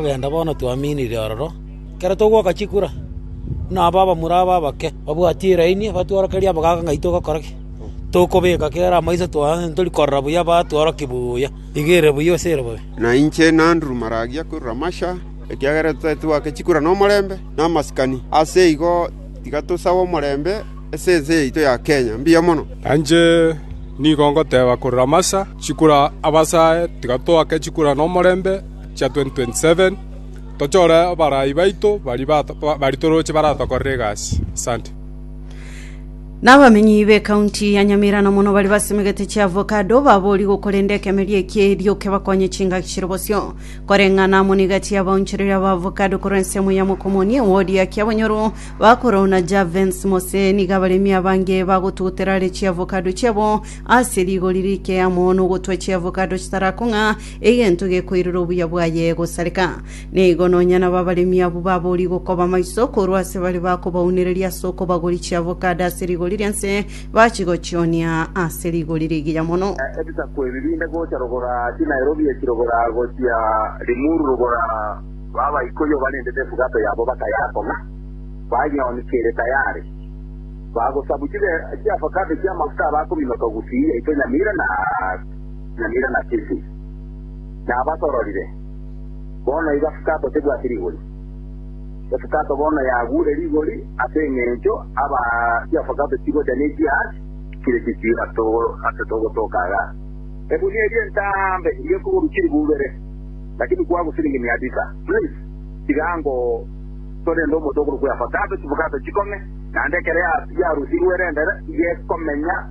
Togenda bono twaminire ororo, ekero togwoka chikura, buna aba abamura aba abake babwatie iraini, batworokerie abogaaka ng'ai togokora ki. Tokobeka kera amo inse twaye, ntori korora buya batworokia buya. Iga ere buya ase ere bobe. Na inche n'Andrew maragia korwa Russia, ekiagera totari twake chikura nomorembe na amasikani, ase igo tiga tosabe omorembe ase ense yaito ya Kenya. Mbuya mono. Na inche nigo ngoteba korwa Russia, chikura abasae, tiga twake chikura nomorembe. chia 2027, tochore abarai baito baria baritoroche baratokorere egasi. Asante. Nabamenyi b'ekaunti ya Nyamira na mono bari basemegete chiavocado babori gokorenda ekemeria ekie erio kebakonye chingaki chire bosio. Koreng'ana amo negati y'abaonchoreria ba avocado korwa ensemo ya Mokomoni ewodi ya Kiabonyoru, Bakoro na Javens Mose nigo abaremi abange bagotugutera are chiavocado chiabo ase rigori rike amo nogotwa chiavocado chitarakong'a Egento gekoirera obuya bwaye egosareka. Nigo nonya nabo abaremi abwo baborie gokoba amaiso korwa ase bare bakobaunereria ase okobagoria chiavocado ase rigori ria nse, bachigochionia ase rigori rigiya mono. Ebisaku ebi binde gocha rogora chiNairobi echi rogora gochia Limuru rogora babaikoyo barendete efugato yabo bakayakong'a bayoni kere tayare bagosabu chiavocado chiamafuta abakominoka gusii yaito Nyamira na Samira na Kisi, nabatororire, bono iga Fukato tebwati rigori. Efukato bono yagure rigori ase engencho aba chia Fukato chigocha ne chia chire chisiira ase togotoka aga. Egunia eria entambe y'ekuguru chiri bubere, lakini kwabu siringi mia tisa. Please, tiga ango torende omote okorokwa Efukato, chifukato chikong'e, naende ekero yarusirwe erendere, iga ekomenya.